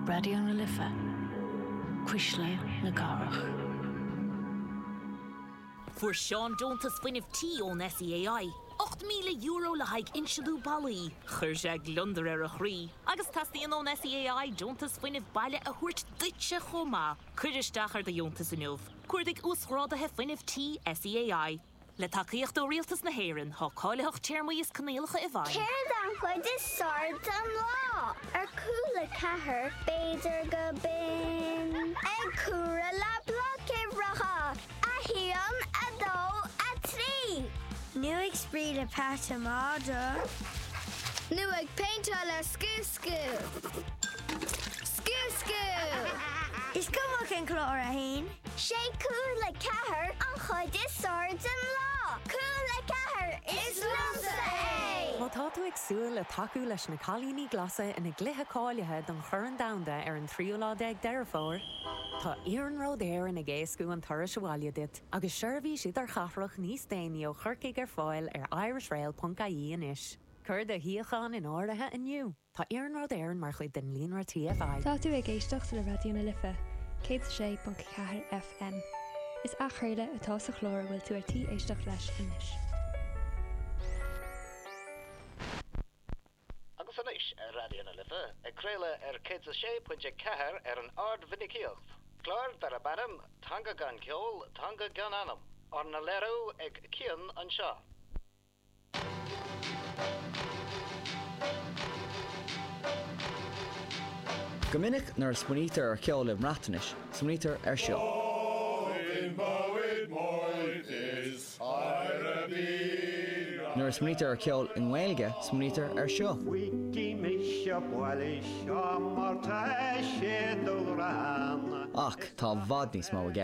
Raidió na Life, Cuisle na Cathrach. Fuair Seán deontas fuinnimh tí ón SEAI, €8,000 le haghaidh insliú ballaí. Chuir sé gliondar ar a chroí agus teastaíonn ón SEAI deontas fuinnimh baile a thabhairt duitse chomh maith. Cuir isteach ar do dheontas inniu. Cuardaigh Uasghráduithe Fuinnimh Tí SEAI. Le tacaíocht ó Rialtas na hÉireann, tá cáilitheacht téarmaí is coinníollacha i bhfeidhm. Céard an chuid is fearr den lá? Ar Cúla4, b'fhéidir gurb in. Ag comhaireamh le bloic uimhreacha, a haon, a dó, a trí. Nó ag spraoi le Pat an Madra. Nó ag péinteáil le scuascú. Scuascú! Is cuma cén clár atá ann. Sé Cúla4 an chuid is fearr den lá. Cúla4, is liomsa é! Má tá tú ag súil le tacú leis na Cailíní Glasa ina gcluiche cáilithe don Chorn Domhanda ar an tríú lá déag Deireadh Fómhair, tá Iarnród Éireann ag éascú an turais abhaile duit agus seirbhís idirchathrach níos déanaí ó Chorcaigh ar fáil ar irishrail.ie anois. Cuir do shuíochán in áirithe inniu! Tá Iarnród Éireann mar chuid den líonra TFI. Tá tú ag éisteacht le Raidió na Life, 106.4 FM. Is athchraoladh atá sa chlár a bhfuil tú ar tí éisteacht leis anois. Agus anois ar Raidió na Life, ag craoladh ar 106.4 ar an ardmhinicíocht, clár darb ainm 'Teanga gan Ceol, Teanga gan Anam', arna léiriú ag Cian anseo. Go minic nuair a smaoinítear ar cheol i mBreatnais, smaoinítear ar seo. Nuair a smaoinítear ar cheol i nGaeilge, smaoinítear ar seo. Ach tá i bhfad níos mó i gceist.